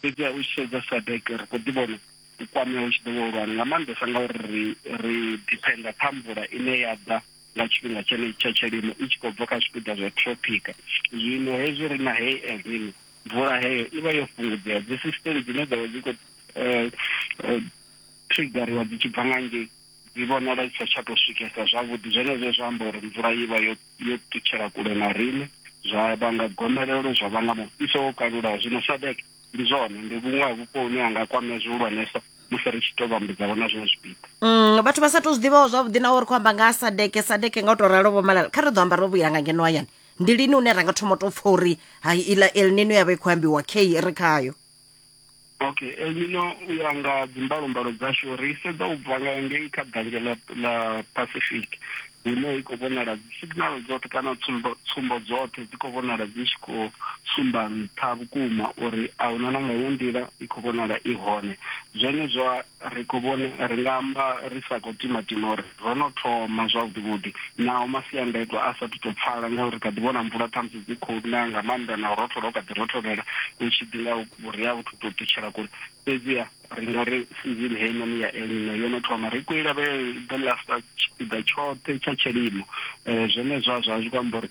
Fhedziha u tshi sedza SADEC, ri khou ḓi vhona u kwamea hu tshi ḓo vha hulwane, nga maanḓesa ngauri ri ri diphenda kha mvula ine ya ḓa nga tshifhinga tshenetshi tsha tshilimo i tshi khou bva kha zwipiḓa zwa throphika. Zwino hezwi ri na heyi El Nino, mvula heyo i vha yo fhungudzea, dzisisiteme dzine dza vha dzi khou triggeriwa dzi tshi bva nga ngei dzi vhonala dzi sa tsha tou swikesa zwavhuḓi, zwenezwo zwa amba uri mvula i vha yo. yo ṱutshela kule na riṋe, zwa vhanga gomelelo, zwa vhanga mufhiso wo kalulaho. Zwino SADEC, ndi zwone, ndi vhuṅwe ha vhupo hune ha nga kwamea zwihulwanesa musi ri tshi tou vhambudzavho na zwiṅwe zwipiḓa. Mm, vhathu vha sa tou zwi ḓivhaho zwavhuḓi naho ri khou amba nga ha sadeke sadeke nga u tou ralo vho malala kha ri ḓo amba ro vhuyela nga ngeno hayani ndi lini une ra nga thoma u tou pfha uri ha iḽa elnino ya vha i khou ambiwa khe ri khayo okay e ngino u ya nga dzimbalommbalo dzashu ri sedza u bva nga ngei kha danje la la pacific hune i khou vhonala signal dzoṱhe kana tsumbo tsumbo dzoṱhe dzi khou vhonala dzi tshi khou sumba nṱha vhukuma uri a huna na nga yo nḓila i khou vhonala i hone zwone zwa Ri khou vhona, ri nga amba ri sa khou timatima uri ro no thoma zwavhuḓivhuḓi naho masiandaitwa a sa athu tou pfala ngauri ri kha ḓi vhona mvula khamusi dzi khou na nga maanḓa na u rothola hu kha ḓi rotholela hu tshi ḓi nga vhuriha a vhu thu tou ṱutshela kule. Fhedziha ri nga ri sizini heinoni ya El Nino yo no thoma. Ri khou i lavhelela uri i ḓo lasta tshipiḓa tshoṱhe tsha tshilimo. Zwenezwo a zwi athu tou amba uri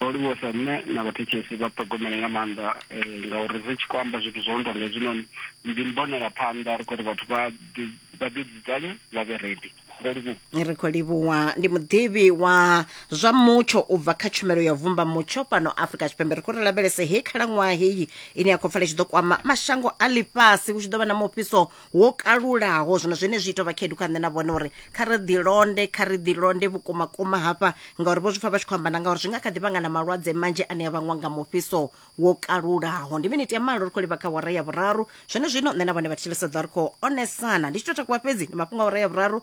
Ro livhuwesa nṋe na vhathetshelesi vha ṱhogomele nga maanḓa ngauri ri tshi khou amba zwithu zwo no tonga hezwinoni ndi mbonela phanḓa ri khou ri vhathu vha vha ḓi dzudzanye vha vhe ready ro livhuwa. Ri khou livhuwa ndi muḓivhi wa zwa mutsho u bva kha tshumelo ya vumba mutsho fhano Afrika Tshipembe ri khou ri lavhelese he khalaṅwaha heyi ine ya khou pfala tshi ḓo kwama mashango a ḽifhasi hu tshi ḓo vha na mufhiso wo kalulaho zwino zwene zwi ita vha khedu kha nṋe na vhone uri kha ri ḓilonde kha ri ḓilonde vhukuma kuma hafha ngauri vho zwi pfa vha tshi khou amba na ngauri zwi nga kha ḓi vhanga na malwadze manzhi ane a vhangwa nga mufhiso wo kalulaho ndi miniti ya malo ri khou livha kha wara ya vhuraru zwene zwino nṋe na vhone vha thetshelesa ḓa ri khou onesana ndi tshi tou takuwa fhedzi ndi mafhungo a wara ya vhuraru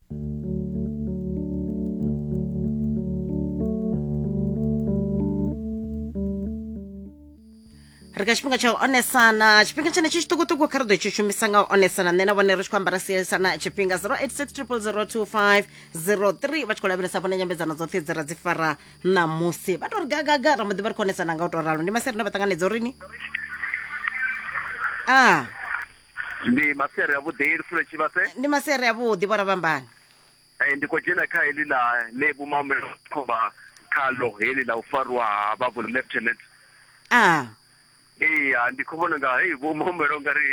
ri kha tshifhinga tsha u onesana tshifhinga tshene tshi tshiṱukuṱuku kha ri ḓo tshi shumisa nga u onesana nṋe na vhone ri tshi khou ambara sielisana tshifhinga 0860002503 vha tshi khou lavhelesa vhone nyambedzano dzoṱhe dzi ra dzi fara ṋamusi vha to ri gagaga ra muḓi vha ri khou onesana nga u to ralo ndi maseri ne vha ṱanganedza urini a ah. ndi masiari avhuḓi lufule tshivhase ndi masiari avhuḓi vho ravhambani um ndi khou dzhena kha heḽi ḽa ḽe vhumamelo khomba khalo heḽi ḽa u farwa ha vhavhu lieutenant a iya ndi khou vhona nga hei vhumamelo nga ri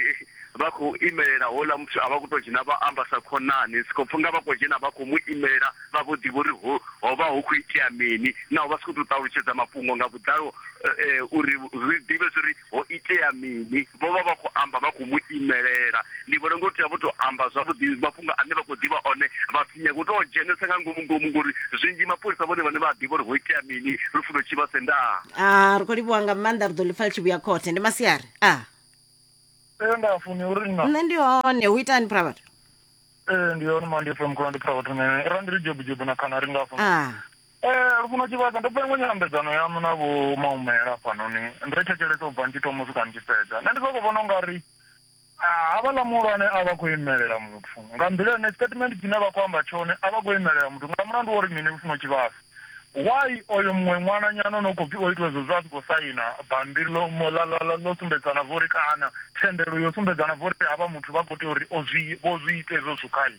vha khou imelela houḽa muthu a vha khou tou dzhena vha amba sa khonani si khou pfha nga vha khou dzhena vha khou mu imelela vha vho ḓivha uri ho ho vha hu khou itea mini naho vha si khou tou ṱalutshedza mafhungo nga vhuḓalo um uri ri ḓivhe zwa uri ho itea mini vho vha vha khou amba vha khou mu imelela ndi vhona ngo tea vho tou amba zwavhuḓi mafhungo ane vha khou ḓivha one vha si nyage u tou dzhenesa nga ngomu ngomu ngori zwinzhi mapholisa vhone vhane vha a ḓivha uri ho itea mini ri funo tshi vha sendaa a ri khou livhuwa nga maanḓa ri ḓo ḽi pfa ḽi tshi vhuya khothe ndi masiari a ee nda funi uri nna nṋe ndi hone hu itani phravhathu ee ndi hone mandi fm khona ndi phara vhathu nene ra ndi ri jobujobu na khana ri ngafho a Ee, Lufuno Tshivhasa, ndo pfa iṅwe nyambedzano yaṋu na Vho Maumela hafhanoni, ndo i thetshelesa u bva ndi tshi thoma u swika ndi tshi fhedza. Nṋe ndi sokou vhona u nga ri havhaḽa muhulwane a vha khou imelela muthu nga nḓila ine statement tshine vha khou amba tshone a vha khou imelela muthu nga mulandu wa uri mini Lufuno Tshivhasa? Why oyo muṅwe ṅwananyana o no khou pfi o itiwa hezwo zwa a si khou saina bammbiri ḽo mo- ḽa- ḽa- ḽa- ḽo sumbedzana zwo ri kana thendelo yo sumbedzana zwo ri havha muthu vha khou tea uri o zwi vho zwi ita hezwo zwithu khae?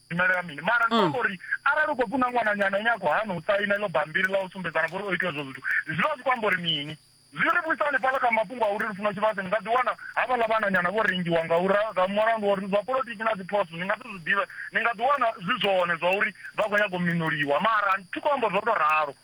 imelela mini mara ndi amba uri arali u khou pfi na ṅwananyana ine a khou hana u saina iḽo bambiri ḽa u sumbedzana vha uri o itiwa zwo zwithu zwi vha zwi khou amba uri mini zwi ri vhuisa hanefhaḽa kha mafhungo a uri lufuno tshivhase ni nga ḓi wana havhaḽa vhananyana vho rengiwa nga ura nga mulandu wa uri zwa politiki na dziphoso ni nga si zwi ḓivhe ni nga ḓi wana zwi zwone zwa uri vha khou nyaga u minoliwa mara thi khou amba zwo tou ralo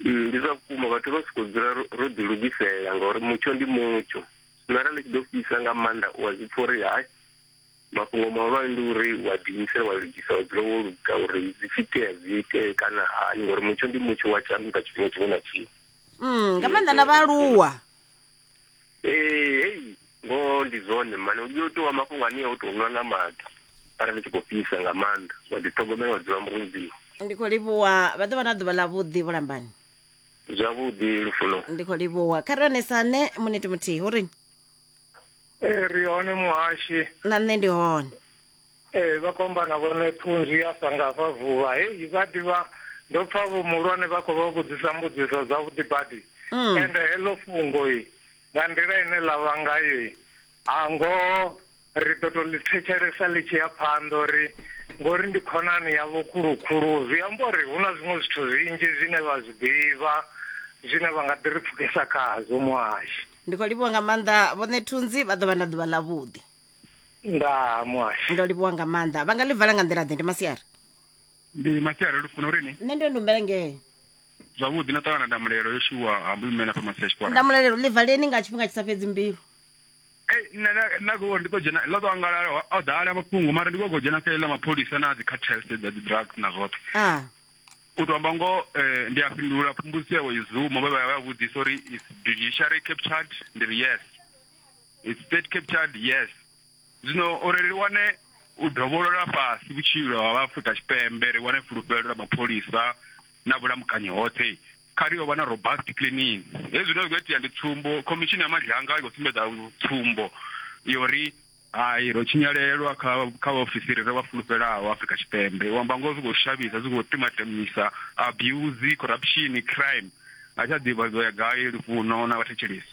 Mm, ndi zwa vhukuma vhathu vha siko dzula ro ḓi lugisela ngauri mutsho ndi mutsho zwino arali tshi ḓo fhisa nga maanḓa u a zwi pfa uri hai mafhungo mahulwane ndi uri wa ḓiimisela wa lugisa wa dzula wo luga uri zwi tshi itea zwi itee kana hani ngauri mutsho ndi mutsho wa tshanduka tshifhinga tshiṅwe na tshiṅwe mm, nga maanḓa na vhaaluwa ee hei ngoho ndi zwone mani u tea u ṱuwa mafhungo ane o tou nwa nga maḓi arali tshi khou fhisa nga maanḓa wa ḓiṱhogomela wa dzula mudzimu ndi khou livhuwa vha ḓo vha na ḓuvha ḽa vhuḓi vhulambani zwavhuḓi lufuno ndi khou livhuwa kha ri onesane muniti muthihi uri Eh, ri hone muhashi na nṋe ndi hone Ee, vha khou amba na vhone phunzwi ya sa nga fha vuvha. Hei, vha ḓivha, ndo pfa vho muhulwane vha khou vha vhudzisa mbudziso dzavhuḓi badi. Mm. Ende heḽo fhungo-i, nga nḓila ine ḽa vha ngayo-i, ha ngoho ri ḓo tou ḽi thetshelesa ḽi tshi ya phanḓa uri ngori ndi khonani yavho khulukhulu, zwi amba uri hu na zwiṅwe zwithu zwinzhi zwine vha zwi ḓivha zwine vha nga ḓi ri pfukisa khazwo, Muhashi. Ndi khou livhuwa nga maanḓa vhoṋe Thunzi, vha ḓo vha na ḓuvha ḽavhuḓi. nga muhasho ndo livhuwa nga maanḓa vha nga ḽi vala nga nḓila ḓe ndi masiari ndi masiari lufuna uri ni nṋe ndo ndumbela ngee zwavhuḓi na ṱangana ndamulelo yo shuwa hambo imela fha masia tshikwara ndamulelo ḽi valeni nga tshifhinga tshi sa fhedzi mbilu ei nṋe na- na khou ndi ḓo dzhena ḽo ḓo angalala ho- ho ḓala mafhungo mara ndi khou khou dzhena kha iḽa mapholisa na dzi cartels dza dzi drugs na zwoṱhe a u to amba ngoho eh, ndi a fhindula phumbusi yawe izuma vha vha vha vhudzisa uri is judiciary captured ndi ri yes It's state captured, yes. Zwino uri ri wane u dovholola fhasi vhutshilo ha Afrika Tshipembe, ri wane fulufhelo ḽa mapholisa na vhulamukanyi hoṱhe, kha ri yo vha na robust cleaning. Hezwi zwine zwi khou itea ndi tsumbo, khomishini ya Madlanga i khou sumbedza tsumbo yori hai ro tshinyalelwa kha kha vhaofisiri ri vha fulufhelaho Afrika Tshipembe. U amba ngoho zwi khou shavhisa, zwi khou timatemisa abuse, corruption, crime. A tsha ḓivha zwi ḓo ya gai lufuno na vhathetshelesi.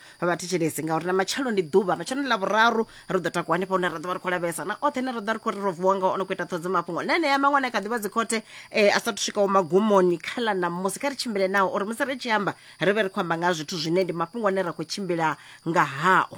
vha thetshelese ngauri na matshelo ndi ḓuvha matshelo ḽa vhuraru ri ḓo takuwa hanefha hune ra ḓo vha ri khou lavhelesa na oṱhe ne ra ḓo vha ri khou ri ro vuwa ngao ono khou ita ṱhodzo mafhungo na enea maṅwe ane kha ḓivha dzikhothe um a sathu swikaho magumoni kha ḽa ṋamusi kha ri tshimbile nao uri musi ri tshi amba ri vhe ri khou amba nga ha zwithu zwine ndi mafhungo ane ra khou tshimbila nga hao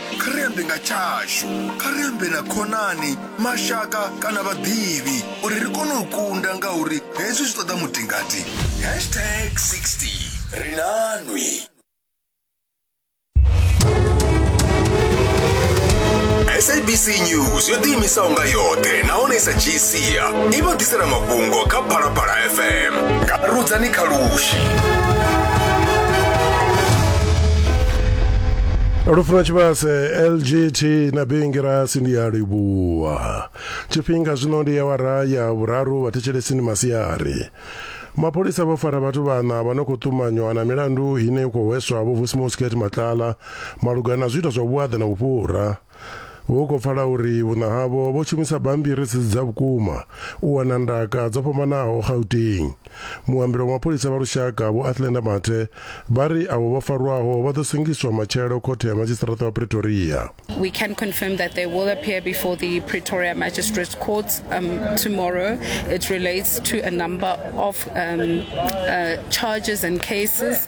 Kha ri ambe nga tshashu. Kha ri ambe na khonani, mashaka kana vhaḓivhi uri ri kone u kunda ngauri hezwi zwi ṱoḓa mutingati. Hashtag 60. Ri na nwi. SABC News yo ḓiimisaho nga yoṱhe nahone i sa dzhisi ya i vha ḓisela mafhungo kha phalaphala fm nga rudzani kha lushi lufuno tshivhase lgt na bingirasi ndi ya livhuwa tshifhinga zwino ndi awara ya vhuraru vhathetshelesini masiari mapholisa vho fara vhathu vhana vha no khou ṱumanywa na milandu ine i khou hweswa vho vusimosket matlala malugana na zwiito zwa vhuaḓa na vhufhura Hu khou pfala uri vhuṋa havho vho shumisa bammbiri dzi si dza vhukuma u wana ndaka dzo fhambanaho Gauteng. Muambeli wa mapholisa vha lushaka Vho Athlenda Mathe vha ri avho vho farwaho vha ḓo sengiswa matshelo khothe ya madzhisiṱaraṱa wa Pretoria. We can confirm that they will appear before the Pretoria Magistrates Court um, tomorrow. It relates to a number of um, uh, charges and cases.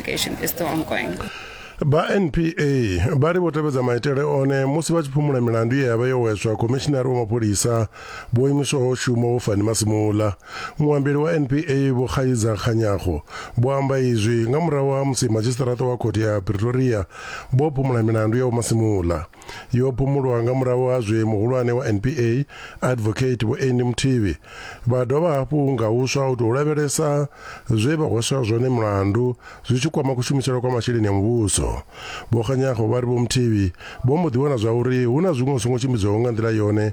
investigation is still ongoing. vha npa vha ri vho tevhedza maitele one musi vha tshi phumula milandu ye ya vha yo weswa khomishinari wa mapholisa vho imiswaho shuma vho fani masimula muambeli wa npa vho khaiza khanyago vho amba izwi nga murahu ha musi madzhisiṱaraṱa wa khothe ya pretoria vho phumula milandu ya vho masimula yo phumulwa nga murahu ha zwe muhulwane wa NPA advocate Vho Andy Muthivi vha dovha hafhu nga huswa u tou lavhelesa zwe vha hweswa zwone mulandu zwi tshi kwama kushumisele kwa masheleni a muvhuso Vho Kganyago vha ri Vho Muthivi vho mbo ḓi wana zwa uri hu na zwiṅwe zwi songo tshimbidzaho nga nḓila yone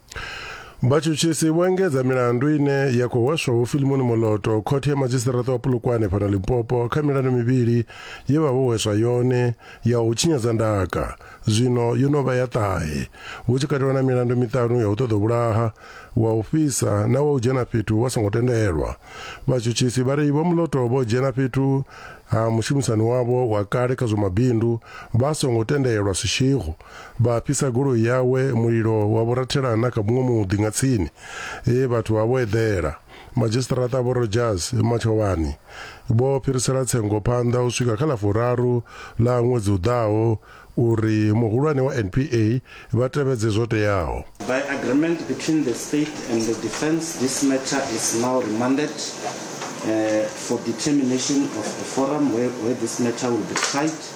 vhatshutshisi vho engedza milandu ine ya khou hweswa vhofilimoni moloto khothe ya madzhisiṱiraṱa wa pulukwane fhano limpopo kha milandu mivhili ye vha vho hweswa yone ya u tshinyadza ndaka zwino yo no vha ya ṱahe hu tshi katelwa na milandu miṱanu ya u ṱoḓa vhulaha wa u fhisa na wa u dzhena fhethu wa songo tendelwa vhatshutshisi vha ri vho muloto vho dzhena fhethu ha mushumisani wavho wa kale kha zwa mabindu vha songo tendelwa sishigo Vha fhisa goloi yawe, mulilo wa vho rathela na kha muṅwe muḓi nga tsini, e vhathu vha vho eḓela. Madzhisiṱaraṱa Vho Rodgers Matshovhani vho fhirisela tsengo phanḓa u swika kha ḽa furaru ḽa ṅwedzi u ḓaho uri muhulwane wa NPA vha tevhedze zwo teaho. By agreement between the state and the defence this matter is now remanded for determination of a forum where this matter will be tried.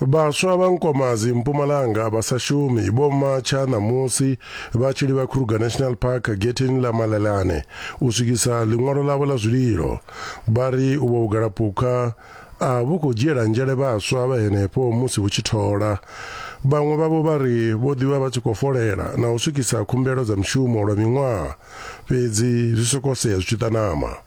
Vhaswa vha Nkomazi, Mpumalanga, vha sa shumi vho matsha ṋamusi vha tshi livha Kruger National Park getheni ḽa Malelane u swikisa ḽiṅwalo ḽavho ḽa zwililo. Vha ri uvho vhugalaphukha a vhu khou dzhiela nzhele vhaswa vha henefho musi vhu tshi thola. Vhaṅwe vhavho vha ri vho ḓi vha vha tshi khou folela na u swikisa khumbelo dza mishumo lwa miṅwaha, fhedzi zwi sokou sea zwi tshi ṱanama.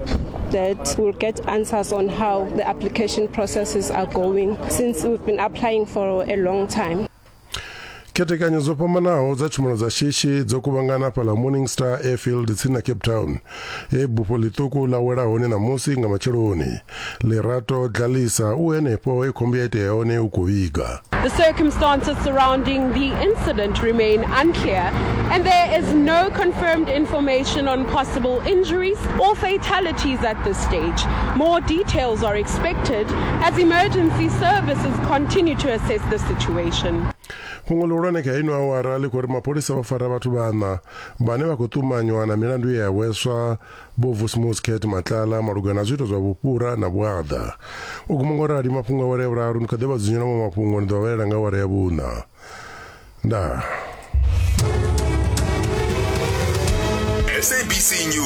that we'll get answers on how the application processes are going since we've been applying for a long time. khethekanyo dzo fhambanaho dza tshumelo dza shishi dzo kuvhangana fhaḽa morning star airfield tsini na cape town he bufho ḽiṱuku ḽa wela hone ṋamusi nga matsheloni Lerato Dlalisa u henefho he khombo ya itea hone u khou vhiga. The circumstances surrounding the incident remain unclear and there is no confirmed information on possible injuries or fatalities at this stage. More details are expected as emergency services continue to assess the situation. fhungo ḽihulwane kha ino awara ḽi khou ri mapholisa vha fara vhathu vhaṋa vhane vha khou ṱumanywa na milandu ye ya hweswa Vho Vusmus Kate Matlala malugana na zwiito zwa vhufhura na vhuaḓa. U guma ngo rali mafhungo awara ya vhuraru, ni kha ḓi vha dzunyela maṅwe mafhungo ni ḓo vha vhalela nga awara ya vhuṋa. Ndaa. SABC News.